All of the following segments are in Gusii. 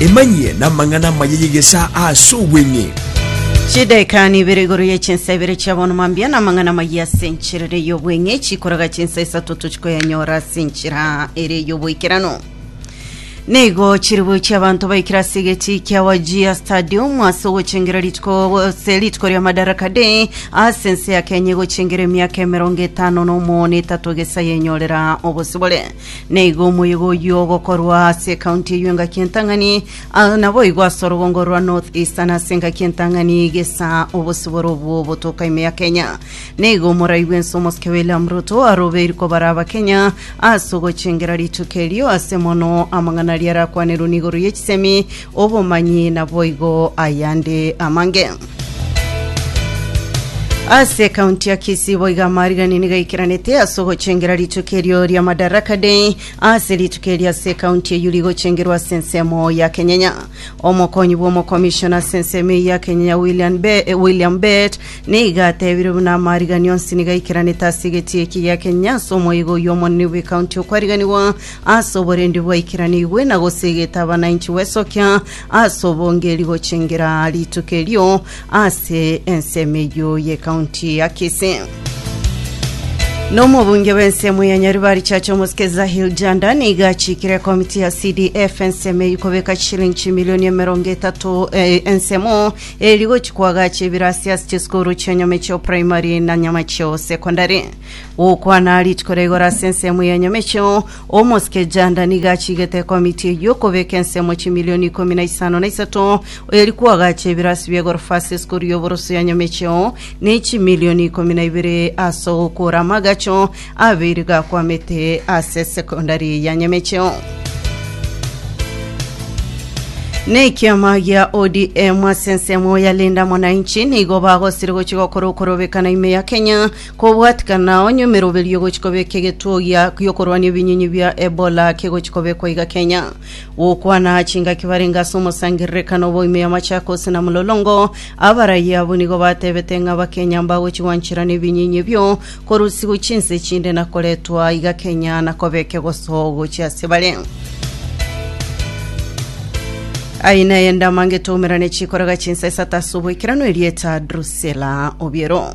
Emanyie namang'ana amaya y'egesaa ase obweng'e. Chidaeka nibere igoro ye chinsa ibere chia bono mambia na amang'ana amaya ase enchera ere y'obweng'e chikoraga chinsa isato tochikoyanyora ase enchera ere y'oboikeranu. Nigo chiribu chia abanto baikire ase egeti kia Wajir Stadium ase ogochengera rituko ase rituko ria Madaraka Day ase ense ya Kenya egochengera emiaka emerongo etano na omo na etato gesa yenyorera obosibore. Naigo omoyega oyio ogokorwa ase ekaunti eyio engaki entang'ani, ah, naboigo ase orogongo rwa North Eastern ase engaki entang'ani gesa obosibore obwo botoka ime ya Kenya. Naigo omorai bw'ense omosike William Ruto arobeiri kobara Abakenya ase ogochengera rituko erio ase mono amang'ana aria arakwanerwe na igoro ye chisemi Obomanyi naboigo ayande amange. Ase ekaunti ya Kisii boigo amariganini gaikeranete ase ogochengera rituko erio ria Madaraka Day ase rituko erio ase ekaunti eyio rigochengerwa ase ensemo ya Kenyenya. Omokonyi bw'omokomishona ase ensemo eyio ya Kenyenya William Be- eh, William Bett nigo atebire buna amarigani onsi nigo aikeranete ase egati eki gia Kenyenya ase omoigo oyio omonene bw'ekaunti okwariganigwa Ase oborendi bwaikeranigwe na gose egetabananchi gwesokia ase obongeri gochengera rituko erio ase ensemo eyio y'ecounty ya Kisii. Nomobunge bw'ensemo ya Nyaribari Chacha Omosike Zahil Janda niga achikire ekomiti ya CDF ensemo eyio kobeka chishilingi chimilioni emerongo etato eh, ensemo eri gochi koagacha ebirasi ase chisukuru chi'enyama echio primary na nyama chio secondary. Gokwana rituko ria igoro ase ensemo ya nyamecheo, omosike Janda nigo achigete ekomiti eyio okobeka ensemo chimilioni ikomi na isano na isato, eri koagacha ebirasi bia egorofa ase esukuru y'oboroso ya nyamecheo, na echimilioni ikomi na ibere ase ogokora amagacho abeire gakwamete ase secondary ya nyamecheo. Na ekiama gia ODM ase ensemo ya Linda Mwananchi nigo bagosire gochia gokora okorobekana ime ya Kenya Kobwatikana onye emeroberio egochi kobeka egetuo gia giokorwania ebinyinyi bia Ebola kegochi kobekwa iga Kenya, gokwana aa chingaki barenge ase omosangererekano obo ime ya Machakos na Mlolongo, abarai abwo nigo batebete ng'a Abakenya mbagochi gwanchera na ebinyinyi ebio korusigwa chinse echinde na koretwa iga Kenya na kobeka egoso gochia ase bare. Aye naye ndamangete oumerane chikoraga chinsa isato ase oboikeranu erieta Drusilla Obiero.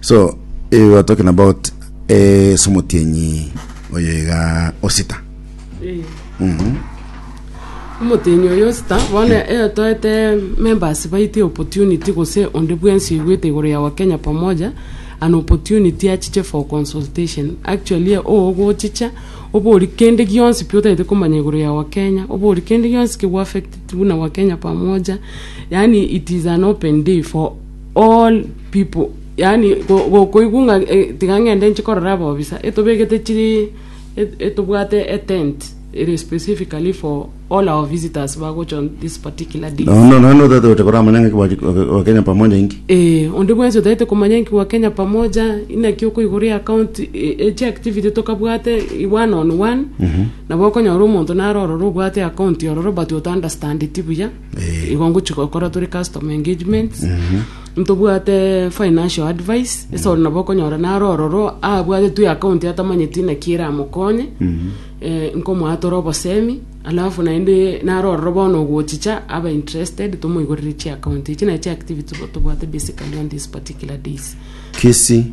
so eh, we are talking about eh, somotienyi oyo iga osita Eh. Mhm. omotenyi oyo sita bono eh, toete members baite opportunity gose onde bwensi oigwete igoro ya wakenya pamoja an opportunity achiche for consultation actually eh, oogochicha obori kende gionsi pi otaete komanya igoro ya wakenya obori kende gionsi kegwa affected buna wakenya pamoja yani it is an open day for All people yaani go- gokoigwa ng'a eh, tiga ng'ende nche korora ababisa, etobegete chiri et- etobwate etent ere specifically for all our visitors bagocha on this particular day. Nono nono otata ote koramanya ng'aki bwa- bwa- bwa Kenya pamoja inki. Eh, onde bwensi otaete komanya nki gwa Kenya pamoja, inaki okoigoria account e- echi activity tokabwate i- one on one, nabo okonyora omonto naro ororo obwate account ororo but ota understandeti buya. Eh. igo ngochi gokora tore customer engagement ntobwate financial advice ase ore nabo okonyora naro ororo abwate twi account atamanyeti naki eramokonye eh, nkomoa tore obosemi alafu naende naro ororo bono ogochicha abe interested tomoigorere chi account echi naye chi activity tobwate basically on this particular days Kisii.